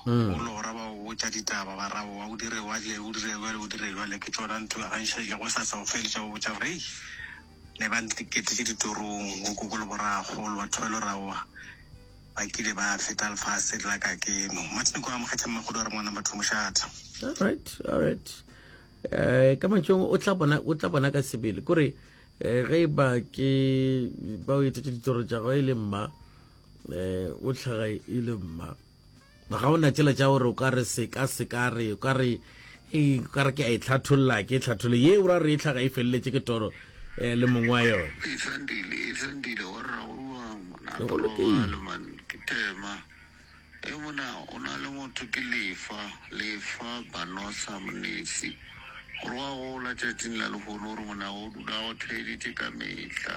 o lora ba o tša ditaba ba rabo wa o dire wa le o dire jwale o dire jwale ke tšona ntho ga nša ile go sa sa o feletša o botša gore ne ba ntiketetse ditorong go koko le boragolo batho ba lo rawa ba kile ba feta lefase la ka keno martin ko amogetse mmagodo wa re ngwana batho mošatha all right all right eh ka mantšong o tla bona o tla bona ka sebele kore eh ge ba ke ba o etsetse ditoro tša go e le mma um o tlhaga e le mma ga o na tsela tša gore o ka re seka seka re o ka re ee, ka re ke a e tlhatholla ke e tlhathole ye o ra re e tlhaga e feleletse ke toro um le mongwe wa yone e thandile e thandile wa rragoa ngwana tolobale man ke tema e mona o na le motho ke lefa lefa banosa monesi gore wa gola tšatšing la lehono gore mona o dula go theeditše ka mehla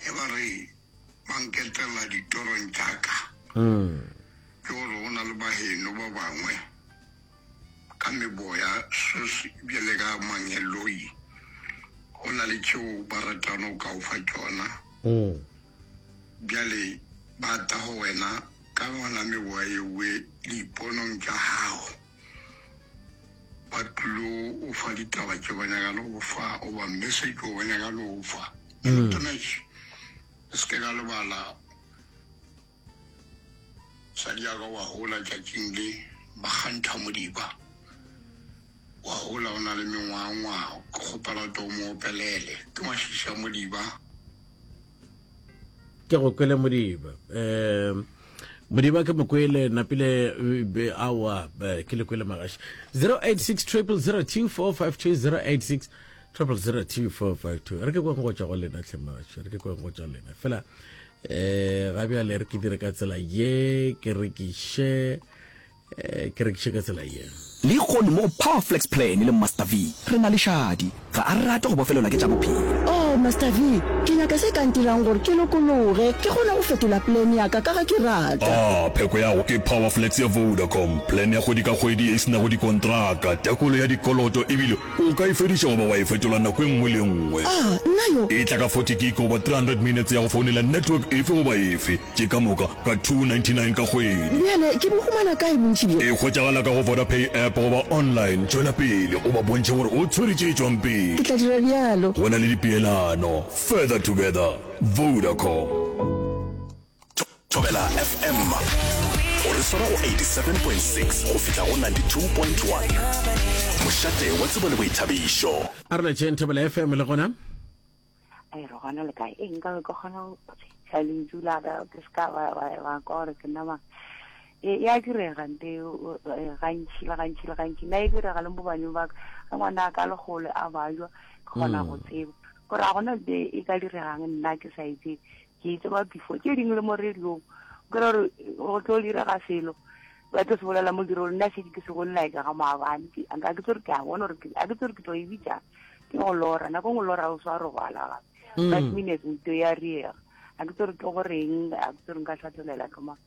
Ge ba re ba nketela ditorong tša ka, ke gore go na le baheno ba bangwe ka meboya sos bjale ka mangeloi, go na le tšeo ba ratano ka o fa tšona. Bjale ba ta go wena ka yona meboya yewe diiponong tša gago. Ba tlilo go fa ditaba tše ba nyaka le go fa, o ba message o ba nyaka le go fa. Mm. Tomesh, se ke ka lebala sa di aga wa hola tšatšing le ba kgantha modiba wa hola o na le mengwangwa ke kgopela to mo opelele ke mashiša modiba ke go kwele modiba um modiba ke mokwele napile eh, awa eh, ke le kwele magaši 086 triple 02452 086 triple 02452 re ke kweng go tšwa go lena tlhemaši re ke kweng go tšwa lena fela um ga bjale re ke dire ka tsela ye ke rekiše Ke rekiše ka tsela ye. Lehono mo go Powerflex Plan le Master V, re na le šadi. Ga a rate go bofelelwa ke tša bophelo. Oh, Master V, ke nyaka se ka ntirang gore ke lokologe, ke kgone go fetola plan ya ka, ka ge ke rata. A pheko ya go ke Powerflex ya Vodacom, plan ya kgwedi ka kgwedi ye e se nago dikontraka, tekolo ya dikoloto ebile o ka e fediša goba wa e fetola nako e nngwe le e nngwe. Ah, nna yo! E tla ka forty gig goba three hundred minutes ya go founela network efe goba efe. Ke ka moka ka 299 ka kgwedi. Bjale ke bo humana kae bontši bjo? E hwetšagala ka go Vodapay app goba online. Tšwela pele o ba bontšhe gore o tshwere tše tšwang pele. Ke tla dira bjalo. Go na le dipeelano. Further together. Vodacom. Thobela FM go re swara go 87.6 go fihla go 92.1. Mošate wa tsebo le boithabišo. A re letšeng Thobela FM le gona. a re gona le kae e nka ke kgona go tla lentšu la ka ke se ka ba ba kwa gore ke nama e ya direga nte e, gantši le gantši le gantši nna e direga le mo baneng ba ka ge ngwana a ka le gole a bajwa ke kgona go mm. tseba gore a gona nte e ka diregang nna ke sa itse Ke tseba before tše dingwe le mo radiong o kry-a gore go tlo direga selo ba tlo se bolela mo dirong nna šedi ke se bolela ka ga maabane ga ke tse gore ke a bona gore ga ke tse gore ke tlo e bitsa ke go lora nako ngwe lora o swa robala gape five minutes nto ya riega ga ke tse gore ke goreng ga ke tse gore nka tlhatlolela tloma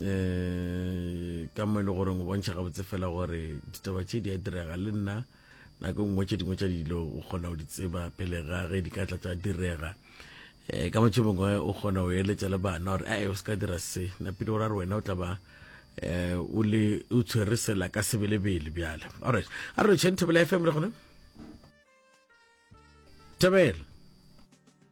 um ka mo e le goreng o bontšha gabotse fela gore ditaba tše di a direga le nna nako nngwe tše dingwe tša dilo o kgona go di tseba pele ga ge di ka tla tša direga um ka motho mongwe o kgona go eletša le bana gore a o se ka dira se napile o ra re wena o tla ba um o le o tshwere sela ka sebelebele bjale alright a re tšheng thobela fm le gone thobela